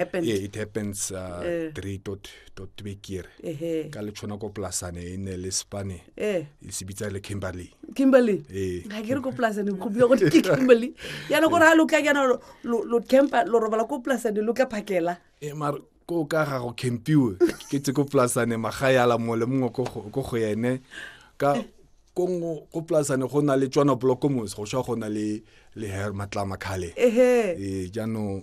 happens. Yeah, it happens uh, Eh. 3.3 kere Ehe. ka le tshwana ko polasane e ne le spane Eh. e se bitsa le kimberley kimberley Eh. ga ke re ko polasane go bua gote ke kimberley yana gore ga lo tla yana lo- lo lo campa lo robala ko polasane lo tla phakela e mar ko ka ga go campiwe ke tse ko polasane magae a la mongwe le mongwe ko go- ko go ene ka ko ngo- ko polasane go na le tswana blokomos go swa go na le le her matlama khale ehe Eh, jaanong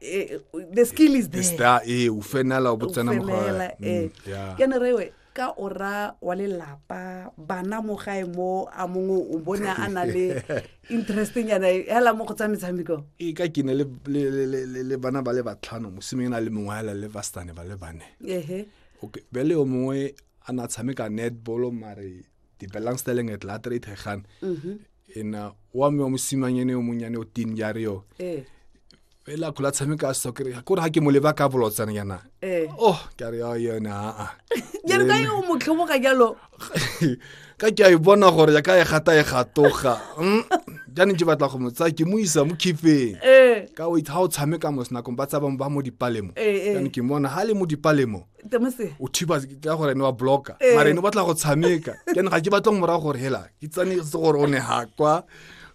eh, the skill is there star e u fenela u botsena mo ga eh mm, ke ne rewe ka ora wa lelapa bana mo gae mo a mongwe o bone a na le interesting yana hela mo go tsa metshameko e ka ke ne le bana ba le batlhano mosimeng na le mongwe hela le bastane ba le bane ehe okay bele o mongwe a na tshameka netball mare di belangstelling het later uit gegaan. Mm -hmm. En uh, wa me wa mosimanye ne o monyane o tin ya re yo. Eh. Ela kula tsame ka soccer. Ko ha ke mo leba ka bolotsana yana. Eh. Oh, ka re ya yona. Ah. Ya re ka yo mo tlhobo ka jalo. Ka ke a e bona gore ya ka e gata e gatoga. Mm. Jane ke batla go motsa ke mo isa mo khifeng. Eh. Ka wait ha o tsame ka mo sna kompa tsa ba mo dipalemo. Eh, eh. Jane ke mona ha le mo dipalemo. o thiba ka gore ne wa blocka eh. mare ne batla go tshameka ke ne ga ke batla morago gore hela ke tsane se gore o ne ha kwa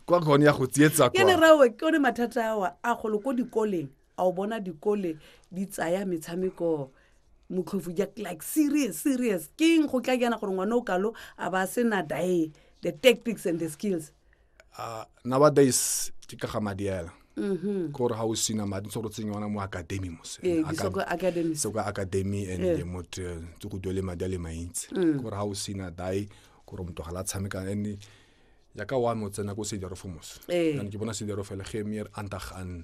kwa gone ya go tsietsa kwa ke ne rawe ke one mathata awa a golo ko dikoleng a o bona dikole di tsaya metshameko motlhofu ja like serious serious keng go tla jana gore ngwana o kalo a ba se na dae the tactics and the skills uh, nowadays ke ka ga madi ela mm-hmm. kore ga o sina madi ntse gore tsenya ona mo academy mose eh, so ka academy and eh. motho eh, tse go duele madi a le mantsi mm. kore ga o sina dae kore motho ga la tshameka and yaka wa mo tsena ko sedero fo mose ke bona sedero fela ge mere antag an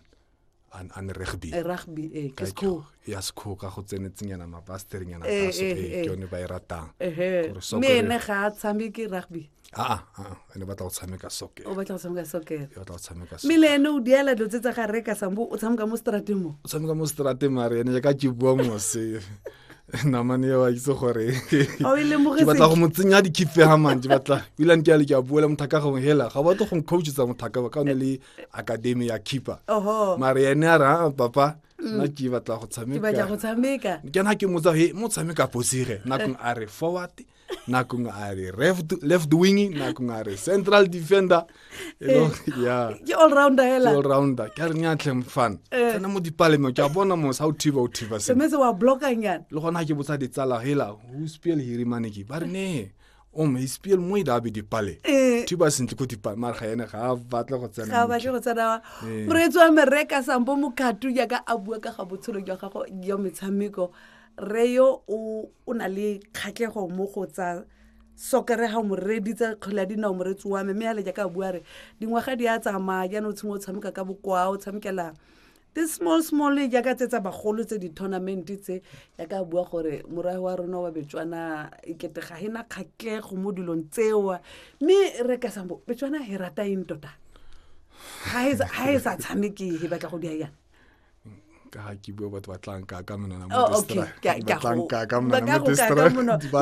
an an rugby eh, rugby eh ke school ya school ka go tsenetsenyana ma pastor nyana eh, ka so eh, eh, eh ke yone ba e ratang eh me ne ga tsambi ke rugby a ah, a ah, ah, ene batla go tshameka soccer o batla go tshameka soccer o batla go tshameka soccer mile ene o diela dilo tse tsa ga reka sambo o tshameka mo strateng mo o tshameka mo strateng mare ene ka ke bua mo se namane eo a itse gore ke batla go mo tsenya dikhife ga mantse batla ebilane ke ale ke a buela mothaka gongwe hela ga batlo go ncoachitsa mothaka ba ka one le akademi ya keeper oho mare ene a ra "Ah, papa Mm. nna ke batla go ke batla go tshameka tshameka ke na ke motsa he mo tshameka posire nakong a re forward nakong a re left- left wing nakong a re central defender e le gore- ya ke all rounder ke hela all rounder ke a re nyatlheng fan Eh. tsena mo dipalemo ke a bona mosa o thiba o thiba sengwe semetse wa blockanyana le gona ke botsa ditsala hela who spell hirimane ke ba re ne o mo ispiel mo ile a be dipale Eh. thiba sentle ko dipale mare ga ene ga a batla go ga tsena batle go tsenawa Ee. moreetsi wa mereka sampo mokatu jaaka a bua ka ga botshelo jwa gago jwa metshameko re yo o o na le kgatlhego mo go tsa sokere ga mo reeditse kgwele ya dinao moreetsi wa me mme ale jaaka a bua re dingwaga di a tsamaya jaanong o tshimo o tshameka ka bokwao o tshamekela the small small jaaka tse tsa bagolo tse di-tournament tse yaka bua gore morae wa rona wa betswana ekete ga e na kgatlego mo dilong tsewa mme re ka sambo betswana e rata eng tota ga e sa tshameke e batla go dia yang ka ga ke bua batho ba tlanka ka monona oh,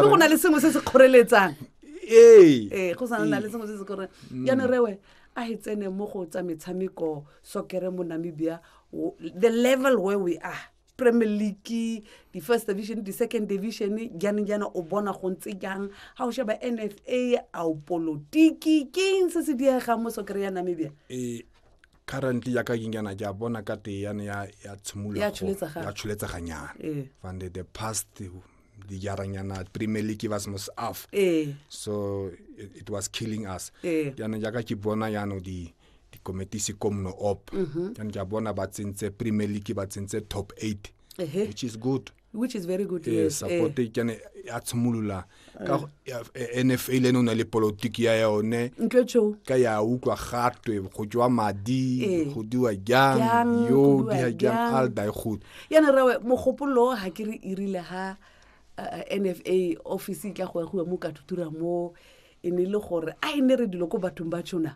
go na le sengwe se se kgoreletsang ee go sana le sengwe se se kgoreletsang jaanong rewe a e tsene mo go tsa metshameko sokere mo namibia the level where we are premier league di-first division di-second division jane jana o bona go ntse jang ga o sheba n f a a o polotiki keng se se diega mo sokere ya namibia e, currently ya ka kenyana ke a bona ka te yane ya tsholetseganyana e. fande the past dijaranyana premier league ba semo se af e. so it was killing us yane jaka ke bona yano di dikomiti se komno op mhm. and ke a bona ba tsentse premier league ba tsentse top eight which is good which is very good yes support eh. kene ya tshimolola ka eh. NFA le nona le politiki ya yone ka ya utlwa gatwe go jwa madi eh. go diwa jang yo di ha jang al dai khut yana rawe mogopolo ha ke re irile ha NFA office e tla go ya go mo ka tutura mo e ne le gore a e ne re dilo ko bathong ba tshona